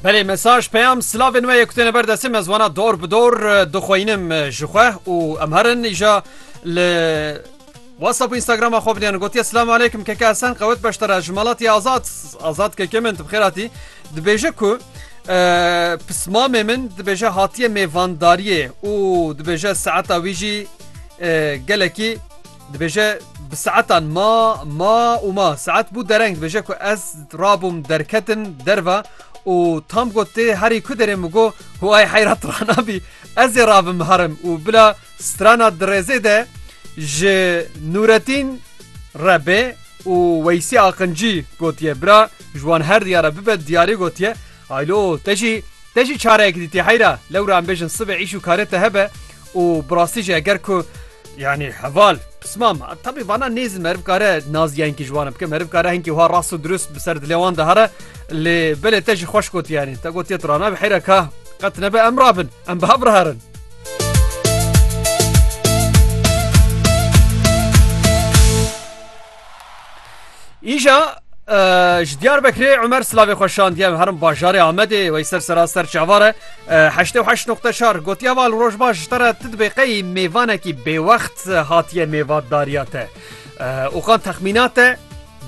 Belê mesaj peyam silavên we yekutêne ber destê me ziwana dor bi dor dixweyinim ji xwe û em herin îja li WhatsApp û Instagrama xwe biniyan gotiye silam aleykim keke Esen qewet beştera ji malatî azad azad keke min tu bi xêratî dibêje ku pismamê min dibêje hatiye mêvandariyê û dibêje saeta wî jî gelekî Dibêje bi saetan ma ma û ma saet bû dereng dibêje ku ez rabûm derketin derva û tam got tê herî ku derê min got hu ay heyrat ranabî ez ê rabim herim û bila strana dirêzê de ji Nûretîn Rebê û Weysî Aqincî gotiye bira ji wan her diyara bibe diyarî gotiye Aylo, te jî, te jî çareyek dîtî heyra, lewra em bêjin sibê îş û karê te hebe û bi rastî jî eger ku yanî heval pisma me tevî vana nêzin meriv kare nazîyayînkî ji wan bike meriv kare hinkî wiha rast û dirust bi ser dilê wan de here lê belê te jî xweş gotiye yanî te gotiye tu ranabe heyra ka qet nebe em rabin em bi hev riherin. Îja ji Diyarbekirê Umer Silavê xwe şandiye herin bajarê Amedê wey ser sera ser çavare heştê heş noqte çar gotiya val rojbaş ji te re ti dibê qeyî mêvanekî bêwext hatiye mêvatdariya te û qan texmîna te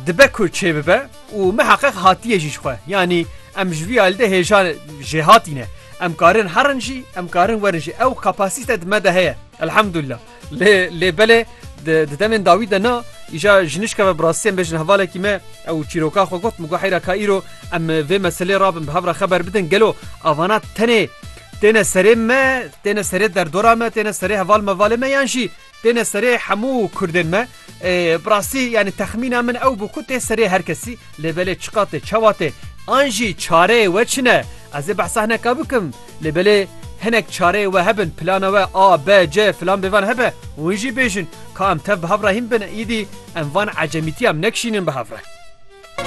dibe ku çê bibe û me heqeq hatiye jî xwe yanî em ji vî alde hêja jê hatîne em karin herin jî em karin werin jî ew kapasîte di me de heye elhemdulillah Lê lê belê di demên dawî de na îja jinişka ve bi rastî em bêjin hevalekî me ew çîroka xwe got min got heyra ka îro em vê meselê rabin bi hev re xeber bidin gelo avana tenê têne serê me têne serê derdora me têne serê heval mevalê me yan jî têne serê hemû kurdên me Bi rastî yanî texmîna min ew bû ku tê serê her kesî lê belê çiqa tê çawa tê an jî çareyê we çi ne ez ê behsa hineka bikim lê belê hinek çareyê we hebin plana we a b c filan bêvan hebe hûn jî bêjin ka em tev bi hev re hîn bin îdî em van ecemîtiya em nekişînin bi hev re.